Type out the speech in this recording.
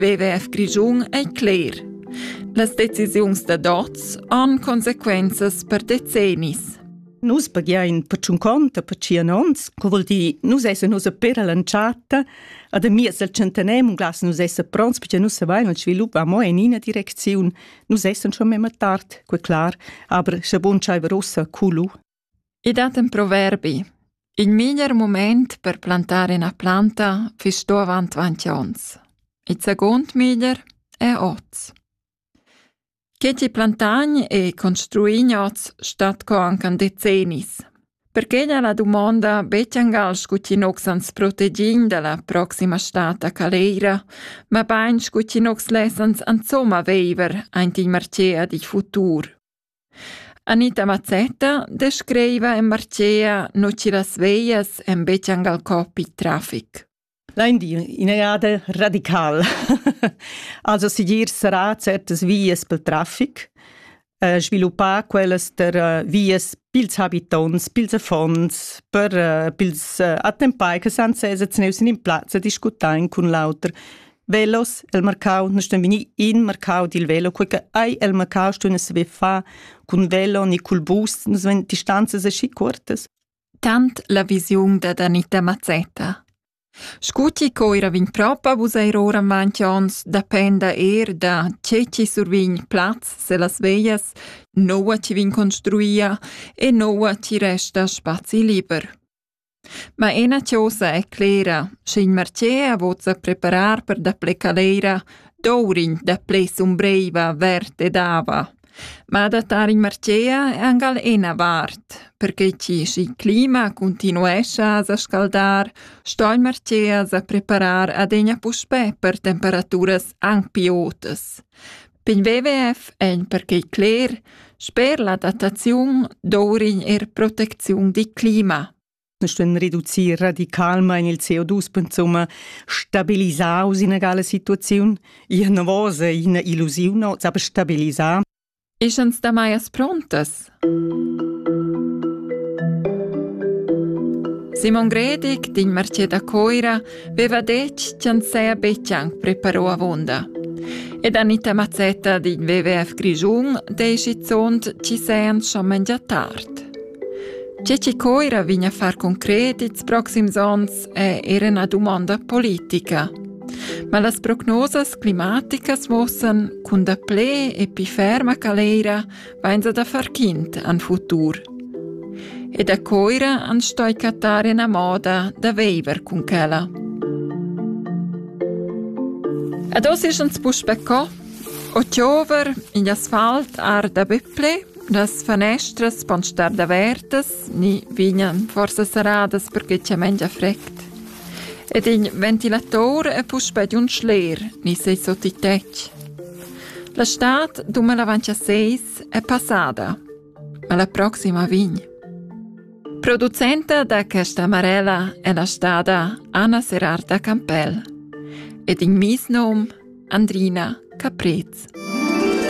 WWF Grischun ei cler. Las decisiuns da dots han consequenzas per decennis. Nus paghiain per tschun conta per tschien ons, co vuol dir, nus esse nus a per all'entschatta, ad a mies al centenem un glas nus esse pronts perché nus savein il svilup va mo in ina direcziun, nus essen schon memma tard, que clar, aber sche bun schaiver ussa culu. I dat ün proverbi: «In miglier mumaint per plantar üna planta füss sto avant dvanti ons. Il seguond miglier è hoz. Che ti plantagn e construign hoz stat co anche an decennis. Perquegna la dumonda be chiangal scu chi nox ans protegign da la proxima stata caleira, mabain scu chi nox less ans insomma veiver aint il marchea digl futur. Anita Mazzetta descriva e marchea nu chi las veglias èn be gal cop il trafic. Lain dir in eada radical. also sigir sarà certas vias pel trafic, eh, sviluppar quellas der eh, vias pils habitonts, pils affons, per eh, pils eh, attempai che san sezs neus in in plazza discutain cun l'auter velos el mercau nu stan vegni in mercau dil velo quei che ei el mercau stun saver fa cun velo ni cul bus nus ven distanzas aschi cuortas tant la visiun da Anita Mazzetta Scuti coira vin propa vus eir ora avanti ons dependa er da che ci survin plaz se las veias noua ci vin construia e noua ci resta spazi liber. Ma ena chosa è clera, sch'in marcher vozza preparar per dapple calera, dovr'ins dapple sumbreiva vert ed ava. Ma adattar in marcher è angal ena vart, perche chi sch'il clima continuescha a sa scaldar, sto il marcher sa preparar adegna puspè per temperaturas anc pi otas. Pin WWF ein perquei cler, sper l'adattaziun dovrin er protecziun dil clima. Stuein reducir radicalmein il CO2-pensum, stabilisar usinegale Situaziun, ina novosa, ina illusiun, aber stabilisar. Eschens da maias prontas? Simon Gredig d'in marchet da Coira veva detg ch'en saja betg anc preparò avunda. Ed Anita Mazzetta d'in WWF Grischun dei schizunt ci sean schon mengia tard. Ce ci Coira vigna far concret ils proxims ons è era una domanda politica. Ma las prognosas climaticas muossen cun da ple e pi ferma caleira vainsa da far quint an futur. E da coira an stoi cattar ena moda da veiver cun quella. Ad os is ans puspe co, o tiover in asfalt ar da büpple, las fanestras pon star davertas, ni vignan forsa saradas perché c'è mengia fregt. Ed in ventilator è puspe di un schler, ni sei sotto i tec. La stad dumelavantseis è passada, ma la proxima vegn. Producenta da questa marella è la stada Anna Serarta Campell ed in misnum Andrina Caprez.